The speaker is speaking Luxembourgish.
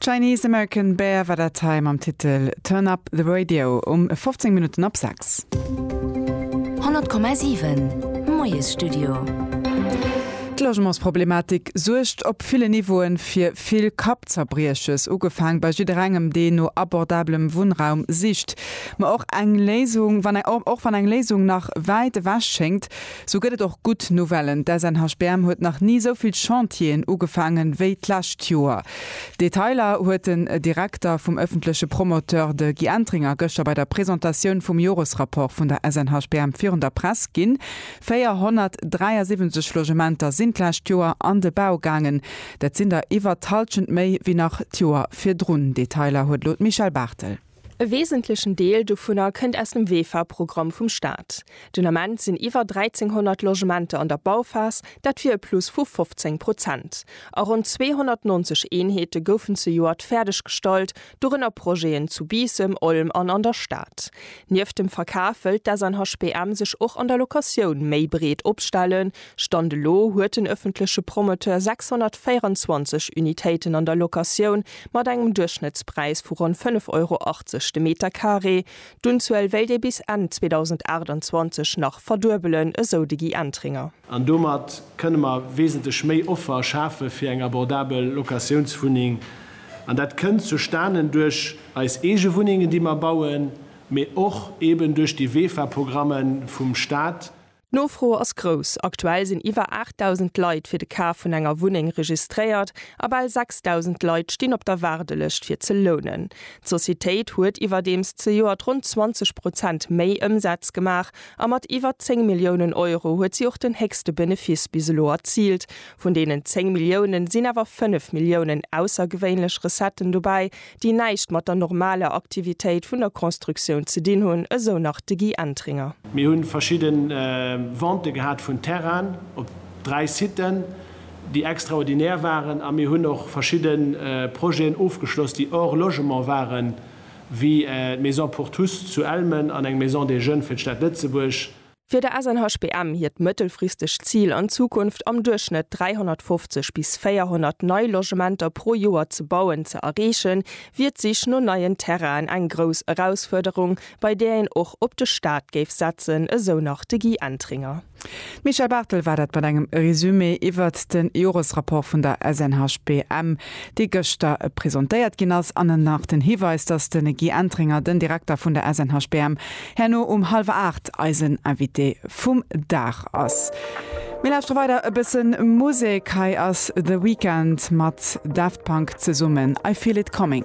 Chinese American Bear war dat hei mam Titel Turn Up The Radio um 15 Minutten op 6. 100,7 Moiesstudio. D'Logementsproblematik suergt op ville Niveaue fir vill Kappzerbrieches, ugefaang bei jidderengem, deen no abordablem Wunnraum sicht. Ma och eng Léisung, wann eng, och wann eng Léisung nach wäit ewech schéngt, Sou gëtt et och gutt Nouvellen, D'SNHBM huet nach ni sou vill Chantieren ugefaangen, wéi d'lescht Joer. Detailer huet den Direkter vum ëffentleche Promoteur, de Guy Entringer, gëschter bei der Presentatioun vum Joresrapport vun der SNHBM virun der Press ginn. 473 Logementer sinn d'lescht Joer an de Bau gaangen, dat sinn der iwwer d'Hallschent méi wéi nach d'Joer virdrun. Detailer huet elo d'Michèle Barthel. E wesentlechen Deel dovunner kënnt aus dem WEFA-Programm vum Staat. Den Ament sinn iwwer 1.300 Logementer an der Bauphas, dat wier e Plus vu 15 Prozent. A ronn 290 Eenheete goufen zejoert fäerdeggestallt, dorënner Projeten zu Biissem, Olm an an der Stad. Nieft dem Verkaf wëllt d'SNHBM sech och an der Locatioun méi breet opstellen, Stand elo huet den ëffentleche Promoteur 624 Unitéiten an der Locatioun mat engem Duerchschnëttspräis vu ronn 5,80 Euro de Meter Carré. D'Unzuel wéilt ee bis Enn 2028 nach verduebelen, esou de Guy Entringer. An domat kënne mer wesentlech méi Offer schafe fir eng abordabel Locatiounswunneng. An dat kënnt zustanen duerch eis eege Wunnengen, déi mer bauen, mee och eeben duerch déi WEFA-Programme vum Staat. D'Nofro ass grouss, aktuell sinn iwwer 8.000 Leit fir de Kaf vun enger Wunneng registréiert a bal 6.000 Leit stinn op der Waardelëscht fir ze lounen. D'Societéit huet iwwerdeems zejoert ronn 20 Prozent méi Ëmsaz gemaach a mat iwwer 10 Milliounen Euro huet si och den héchste Benefiss bis elo erziilt. Vun deenen 10 Milliounen sinn awer 5 Milliounen aussergewéinlech Recetten dobäi, déi näischt mat der normaler Aktivitéit vun der Constructioun ze dinn hunn, esou nach de Guy Entringer. Mir hu verschidde Ventë gehat vun Terrainen op dräi Siten, déi extraordinär waren a mir hunn och verschidde Projeten ofgeschloss, déi hors logement waren, wéi d'Maison pour tous zu Elmen an eng Maison des Jeunes fir d'Stad Lëtzebuerg. Fir de SNHBM hiert mëttelfristegt Zil an Zukunft am Duerchschnëtt 350 bis 400 nei Logementer pro Joer ze bauen ze erreechen, wier d'Sich no neien Terrainen eng grouss Erausfuerderung, bei där een och op de Staat géif setzen, esou nach de Guy Entringer. D'Michèle Barthel war dat mat engem Resumé iwwert de Joresrapport vun der SNHBM, dee gëschter presentéiert ginn ass. An nach den Hiweis, dass de Guy Entringer, den Direkter vun der SNHBM, Herno um hallwer 8 eisen Invité vum Dag ass. Mir lauschtere weider e bëssen Musek. Hei ass The Weeknd mat Daft Punk zesummen I Feel It Coming.